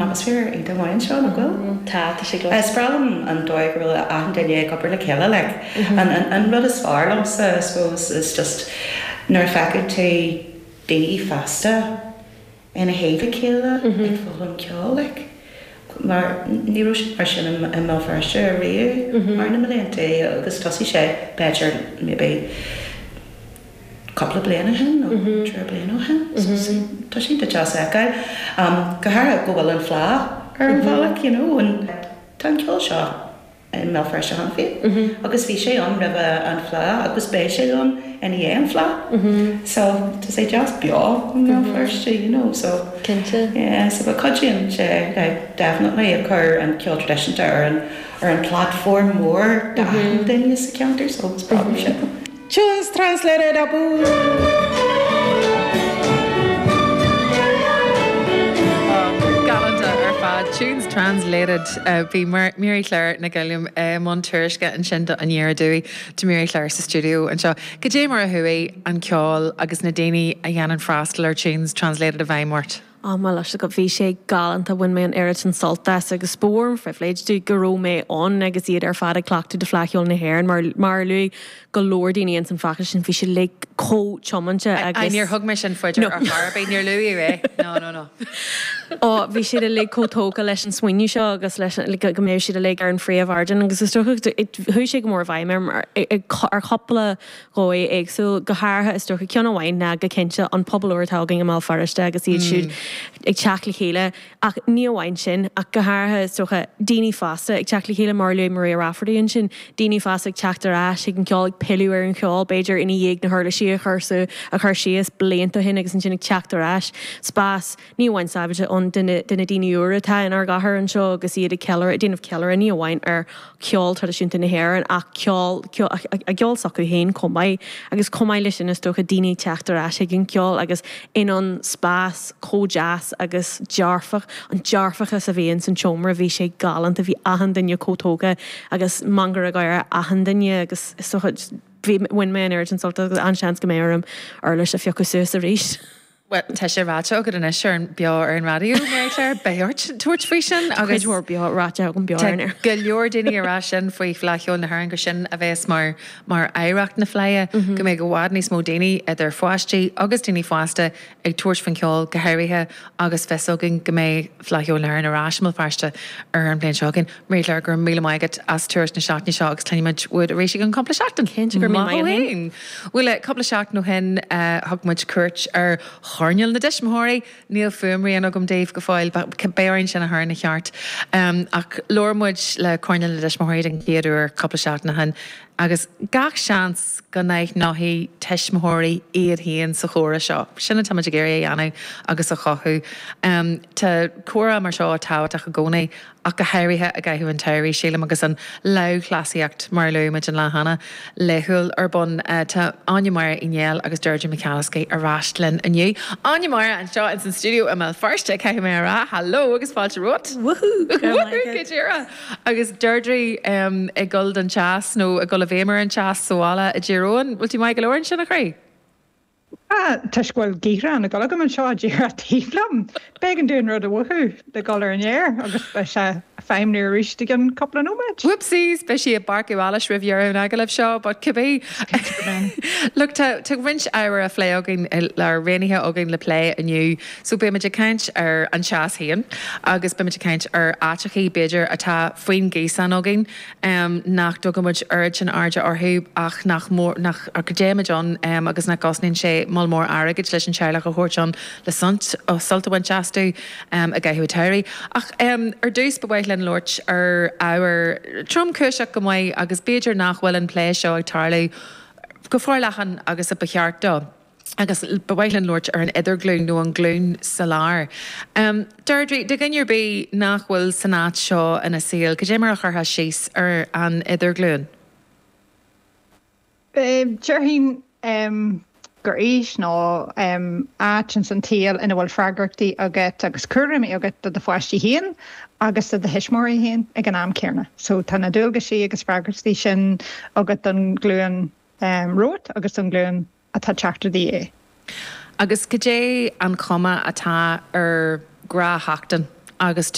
Is fear iontach amháin seo, nach bhfuil? Tá, tá sé go. Spreagann an dóigh go bhfuil achan duine ag obair le chéile like. An rud is fearr liomsa I suppose is just nuair a fheiceann tú daoine fásta le taobh a chéile ag foghlaim ceoil like. Mar ní raibh sé mar sin i mBéal Feirste riamh thar na mblianta agus thosaigh sé b'fhéidir maybe, cupla bliain ó shin, nó trí bliain ó shin, so tá, tá sé deas a fheiceáil. Go háirithe go bhfuil an Fhleadh ar an bhealach, you know, an, tá an ceol seo i mBéal Feirste cheana féin, agus bhí sé ann roimh an Fhleadh, agus beidh sé ann i ndiaidh an Fhleadh. So, tá sé deas beo i mBéal Feirste, you know, so. Cinnte. Yeah, so go cuidíonn sé, like, definitely, ag cur an ceol traidisiúnta ar an, ar an platform mór do achan duine sa cheantar, so is breá liom sin. Tunes Translated abú. Bhí Mary Claire Nic Uilliam i mbun tuairisce ansin d'Aniar Aduaidh. Tá Mary Claire sa stiúideo anseo. Cad é mar a chuaigh an ceol agus na daoine a dhéanann freastal ar Tunes Translated i bhfeidhm ort? Ó, muise, bhí sé galánta, bhain mé an oiread sin sult as agus ba mhór an phribhléid domh go raibh mé ann agus iad ar fad ag cleachtadh do Fleadh Cheoil na hÉireann mar, mar a luaigh go leor daoine ins an phacáiste sin, bhí siad uilig chomh tiomanta Aye, agus. níor thug mé sin faoi deara ar chor ar bith, níor luaigh mé é, no, no, no. Ó, bhí siad uilig chomh tógtha leis an smaoineamh seo agus leis an, like, go mbeadh siad uilig ar an phríomhardán agus is dócha, chuaigh sé go mór i bhfeidhm orm ar, ar chupla dhóigh éagsúil, go háirithe, is dócha, ceann amháin ná go cinnte an pobal úr atá againn i mBéal Feirste agus iad siúd ag teacht le chéile, ach ní amháin sin, ach go háirithe, is dócha, daoine fásta ag teacht le chéile, mar a luaigh Maria Rafferty ansin, daoine fásta ag teacht ar ais chuig an cheol, ag pilleadh ar an cheol, b'fhéidir, i ndiaidh na huirlisí a chur síos blianta ó shin agus ansin ag teacht ar ais, spás. ní amháin sábhailte do na, do na daoine úra atá inár gcathair anseo agus iad ag ceiliúradh, ag déanamh ceiliúradh ní amháin ar cheol traidisiúnta na hÉireann ach ceol, ceol, a gceol s'acu féin chomh maith agus chomh maith leis sin is dócha daoine ag teacht ar ais chuig an cheol agus in ann spás chomh deas agus dearfach, an dearfachas a bhí ins an tseomra bhí sé galánta, bhí achan duine chomh tógtha agus meangadh gáire ar achan duine agus is dócha, bhí, bhain mé an oiread sin sult as an-seans go mbeidh orm uirlis a phiocadh suas arís. Bhuel, tá sé ráite agat anois ar an, beo ar an raidió, Mary Claire, beidh ort tabhairt faoi sin agus. Tá cuid mhór beo ráite agam beo ar an aer. Go leor daoine ag rá sin faoi Fleadh Cheoil na hÉireann gur sin a bhéas mar, mar oidhreacht na Fleidhe, go mbeidh i bhfad níos mó daoine, idir pháistí agus daoine fásta, ag tabhairt faoin cheol, go háirithe agus fios againn go mbeidh, Fleadh Cheoil na hÉireann ar ais i mBéal Feirste an bhliain seo againn. Marie Claire, Go raibh míle maith agat as turas na seachtaine seo agus cluinfimid uait arís i gceann cúpla seachtain. Cinnte, go raibh míle maith agat fhéin. Bhuel, cúpla seachtain ó shin, thug muid cuairt ar choirneal na dtuismitheoirí. Níl fuaimrian agam daoibh go fóill, beidh orainn sin a chur ina cheart. Ach labhair muid le coirneal na dtuismitheoirí den chéad uair cúpla seachtain ó shin agus gach seans, go n-aithneoidh tuismitheoirí iad féin sa chomhrá seo. Sin atáimid ag iarraidh a dhéanamh agus a chothú. Tá comhrá mar seo tábhachtach i gcónaí ach go háirithe i gcaitheamh an tsamhraidh, sílim, agus an lámhchleasaíocht, mar a luaigh muid an lá cheana, laethúil ar bun. Tá Áine Máire Uí Néill agus Deirdre McAliskey ar ais linn inniu. Áine Máire anseo ins an stiúideo i mBéal Feirste, caithfidh mé a rá. Haló agus fáilte romhat. Wúhú! Go raibh maith agat. Wúhú! Go díreach. Agus Deirdre ag dul den teas, nó ag dul i bhféidhm ar an teas sa bhaile i dTír Eoghain, bhfuil tú maith go leor ansin, a chroí? Tá, toisc go bhfuil gaothrán ag dul agam anseo díreach taobh liom, b'éigean dúinn rud a mhúchú le dhul ar an aer agus beidh sé ag feidhmniú arís i gceann cúpla nóiméid. Whoopsies! Beidh sí ag barcú allais roimh dheireadh an agallaimh seo, but cibé. Look, tá roinnt ábhair á phlé againn, roghnaithe againn le plé inniu. So beimid ag caint ar an teas féin agus beimid ag caint ar áiteachaí, b'fhéidir, atá faoin ngaosán againn nach dtugaimid oiread sin airde orthu ach nach mór, nach, go dtéimid ann agus nach gcosnaíonn sé moll mór airgid leis an teaghlach a thabhairt ann le sult, sult a bhaint astu i gcaitheamh an tsamhraidh. Ach ar dtús ba mhaith linn labhairt ar ábhar tromchúiseach go maith agus b'fhéidir nach bhfuil an plé seo ag tarlú go forleathan agus a ba cheart dó. agus ba mhaith linn labhairt ar an idirghlúin nó an glúin sa lár. Deirdre, do dhuine ar bith nach bhfuil san áit seo ina saol, cad é mar a chuirtheá síos ar an idirghlúin? Déarfainn gur aois nó áit ins an tsaol ina bhfuil freagrachtaí agat agus cúraimí agat do do pháistí féin agus do do thuismitheoirí féin ag an am céanna. So tá na dualgaisí agus freagrachtaí sin agat don ghlúin Ehm, romhat agus don ghlúin atá ag teacht i do dhiaidh. Agus goidé an chuma atá ar ghnáthsheachtain agus.